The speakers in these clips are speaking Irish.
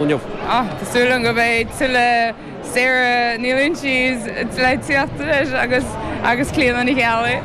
inniu. Tá súil agam go mbeidh tuilleadh Sarah Ní Loingsigh le tíocht anois agus agus Clíona Ní Cheallaigh.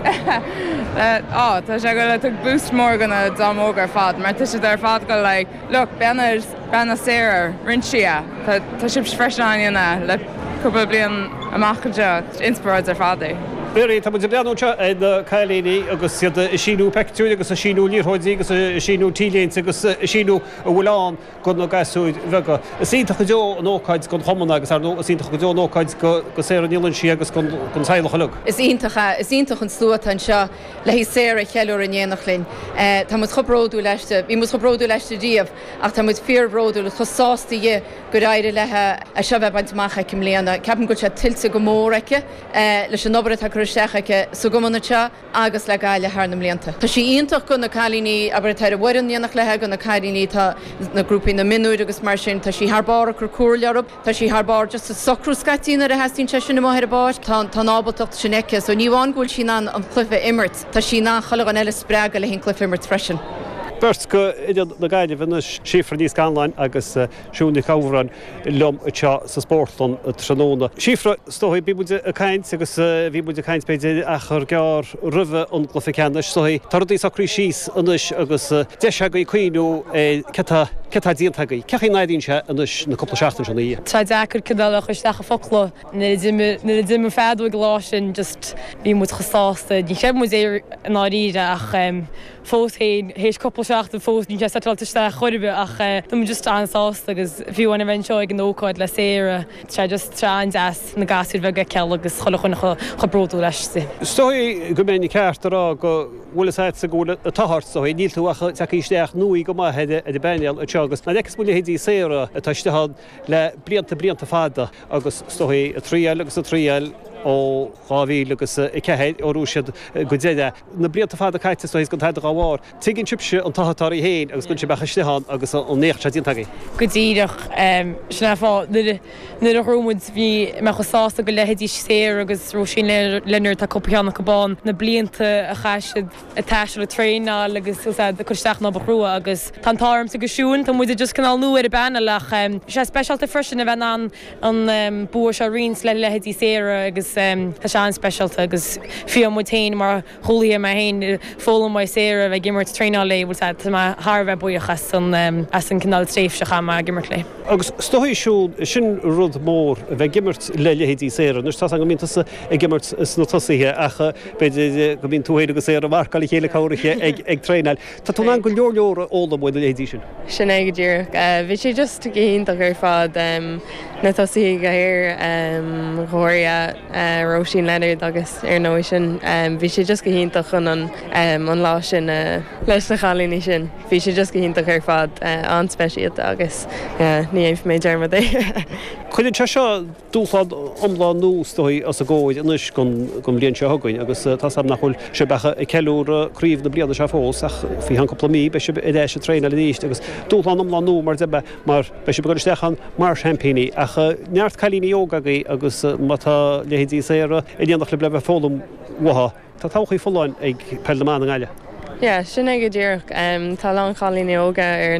Tá sé go le tug boost mór go na dream óga ar fad mar tá siad ar fad go like look beanas beanas Sarah roinnt sia tá tá sibs freisin á dhéanamh le cúpla bliain amach anseo inspioráid ar fad é. Mary, Tá muid ag breathnú anseo ar na cailíní agus iad ag síniú peictiúir agus ag síniú liathróidí agus ag síniú T-léinte agus ag síniú a bhfuil ann. go na gasúir bheaga. Is iontach go deo an ócáid don chumann agus, ar ndóigh, is iontach go deo an ócáid go Sarah Ní Loingsigh agus don teaghlach uilig. Is iontach ea, is iontach an slua atá anseo le haghaidh Sarah a cheiliúradh in éineacht linn. Tá muid chomh bródúil aisti, bhí muid chomh bródúil aisti riamh ach tá muid fíorbhródúil agus chomh sásta dhi gur éirigh léi seo a bheith bainte amach aici i mbliana. Ceapaim go bhfuil sé tuillte go mór aici leis an obair atá curtha isteach aici sa gcumann anseo. agus le Gaillimh thar na mblianta. Tá sí iontach go na cailíní, abair, atá ar an bhfoireann in éineacht léithe, go na cailíní atá sna grúpaí na mionúir agus mar sin. Tá sí thar barr ag cur comhairle orthu. Tá sí thar barr just á socrú scaití nuair a theastaíonn sé sin amuigh ar an bpáirc. Tá an ábaltacht sin aici. So ní amháin go bhfuil sí in ann an cluiche a imirt, tá sí in ann chuile dhuine eile a spreagadh le haghaidh an cluiche a imirt freisin. Beirt go imreoirí na Gaillimhe anois, Síofra Ní Scanláin agus Siún Nic Shamhráin. liom anseo sa Spórtlann tráthnóna. Síofra, is dóigh, bhí muid ag caint agus bhí muid ag caint b'fhéidir achar gearr roimhe an gcluiche ceannais, so tá rudaí socraithe síos anois agus deis agaibh cuimhneamh ar cad tá, cad tá déanta agaibh, cén chaoi a n-airíonn sé anois na cúpla seachtain seo ina dhiaidh. Tá sé deacair cineál a chur isteach i focla. Nuair a d'imigh, nuair a d'imigh an fheadóg an lá sin just bhí muid chomh sásta, níor chreid muid é i ndáiríre ach. fós féin, théis cúpla seachtain fós níl sé settled isteach chor ar bith ach tá muid just an-sásta agus fiú a bheith anseo ag an ócáid le Sarah, tá sé just an-deas na gasúir bheaga a fheiceáil agus chuile dhuine chomh bródúil aisti. Is dóigh go mbeinn ceart a rá go bhfuil a fhios agatsa go bhfuil an t-ádh ort, is dóigh, níl tú ach ag teacht isteach nua go maith ar an bpainéal anseo agus nuair a fheiceas muid leithéidí Sarah atá istigh ann, le blianta blianta fada agus is dóigh ag triail agus ag triail ó 2004 ó raibh siad go deireadh. Na blianta fada caite is dóigh gan tada dhá bharr. Tuigeann sibhse an t-ádh atá oraibh féin agus go bhfuil sibh istigh ann agus an éacht seo déanta agaibh. Go díreach sin an fáth nuair a bhuaigh muid bhí mé chomh sásta go leithéidí Sarah agus Róisín Leonard, tá cúpla ceann acu bán na blianta a chaith siad ag taisteal, ag traenáil agus ag cur isteach an obair chrua agus tá an t-ádh ormsa agus Siún, tá muide just cineál nua ar an bpainéal ach tá sé speisialta freisin a bheith in ann an bua seo a roinnt le leithéidí Sarah agus tá sé an-speisialta agus fiú muid féin mar chúlaithe, mé féin ag foghlaim uaidh Sarah, a bheith ag imirt, traenáil léi, bhuel tá mé thar a bheith buíoch as an cineál tréimhse a chaith mé ag imirt léi. Agus is dóigh, Siún, sin rud mór, a bheith ag imirt le leithéidí Sarah, anois tá 's agam go mbíonn tusa ag imirt sna tosaithe ach. B'fhéidir go mbíonn tú féin agus Sarah ag marcáil a chéile go háirithe ag traenáil. Tá tú in ann go leor leor a fhoghlaim ó na leithéidí sin. Sin é go díreach. Bhí sé just go hiontach ar fad, na tosaithe go háirithe Róisín Leonard agus ar ndóigh sin. Bhí sé just go hiontach chun an lá sin leis na cailíní sin. Bhí sé just go hiontach ar fad, an-speisialta agus ní dhéanfaidh mé dearmad air. Cuireann sé seo dúshlán iomlán nua is dóigh os bhur gcomhair anois don bhliain seo chugainn agus tá súil agam nach bhfuil sibh ach ag ceiliúradh craobh na bliana seo fós ach faoi cheann cúpla mí beidh sibh ar ais ag traenáil arís agus dúshlán iomlán nua mar beidh sibh ag dul isteach ann mar sheaimpíní ach neart cailíní óga agaibh agus má tá leithéidí Sarah in éineacht libh le bheith ag foghlaim uathu. Tá todhchaí folláin ag Peil na mBan i nGaillimh. Yeah, sin é go díreach. Tá a lán cailíní óga ar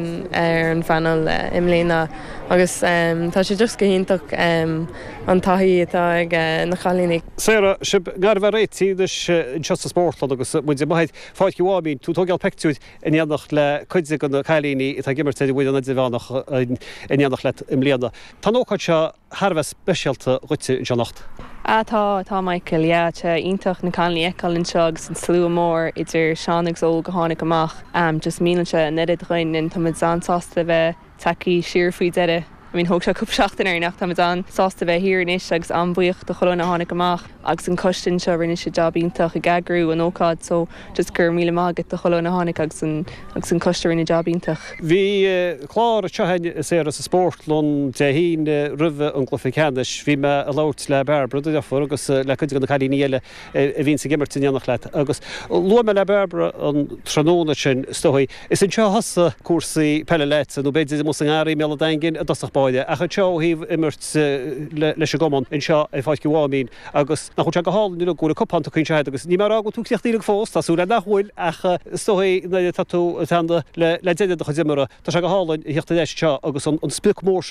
an phainéal i mbliana agus tá sé just go hiontach an taithí atá ag na cailíní. Sarah, sibh gar a bheith réitithe anois anseo sa Spórtlann agus muid amuigh ar Pháirc an Mháimín, tú ag tógáil peictiúir in éineacht le cuid de na cailíní atá ag imirt ar an bhfoireann idirmheánach in éineacht leat i mbliana. Tá an ócáid seo thar a bheith speisialta dhuitse anseo anocht. Ah tá, tá Michael, yeah, tá sé iontach na Connollys a fheiceáil anseo agus an slua mór idir sean agus óg a tháinig amach, am just meanálann sé an oiread dhúinn and tá muid an-sásta a bheith tagthaí siar faoi deireadh, I mean thóg sé cúpla seachtain orainn ach tá muid an-sásta a bheith thiar anois agus an-bhuíoch do chuile dhuine a tháinig amach agus an coiste anseo rinne siad jab iontach ag eagrú an ócáid so just go raibh míle maith agat do chuile dhuine a tháinig agus an agus an coiste a rinne jab iontach. Bhí clár seo saoire sa Spórtlann Dé hAoine roimh an gcluiche ceannais. Bhí mé ag labhairt le Bairbre do dheirfiúr agus le cuid de na cailíní eile a bhíonns ag imirt in éineacht leat agus luaigh mé le Bairbre an tráthnóna sin is dóigh, is anseo a thosaigh cúrsaí peile leatsa nó b'fhéidir amuigh sa ngarraí i mBéal an Daingin i dtosach báire ach anseo ó thaobh imirt leis an gcumann anseo ar Pháirc an Mháimín. Agus nach bhfuil sé go hálainn rud go bhfuil an cupán tugtha anseo agat agus níl mé ag rá go bhfuil tú críochnaithe fós, tá súil agam nach bhfuil ach is dóigh nuair atá tú ag teannadh le deireadh do chuid imeartha tá sé go hálainn a thíocht ar ais anseo agus an sprioc mór sin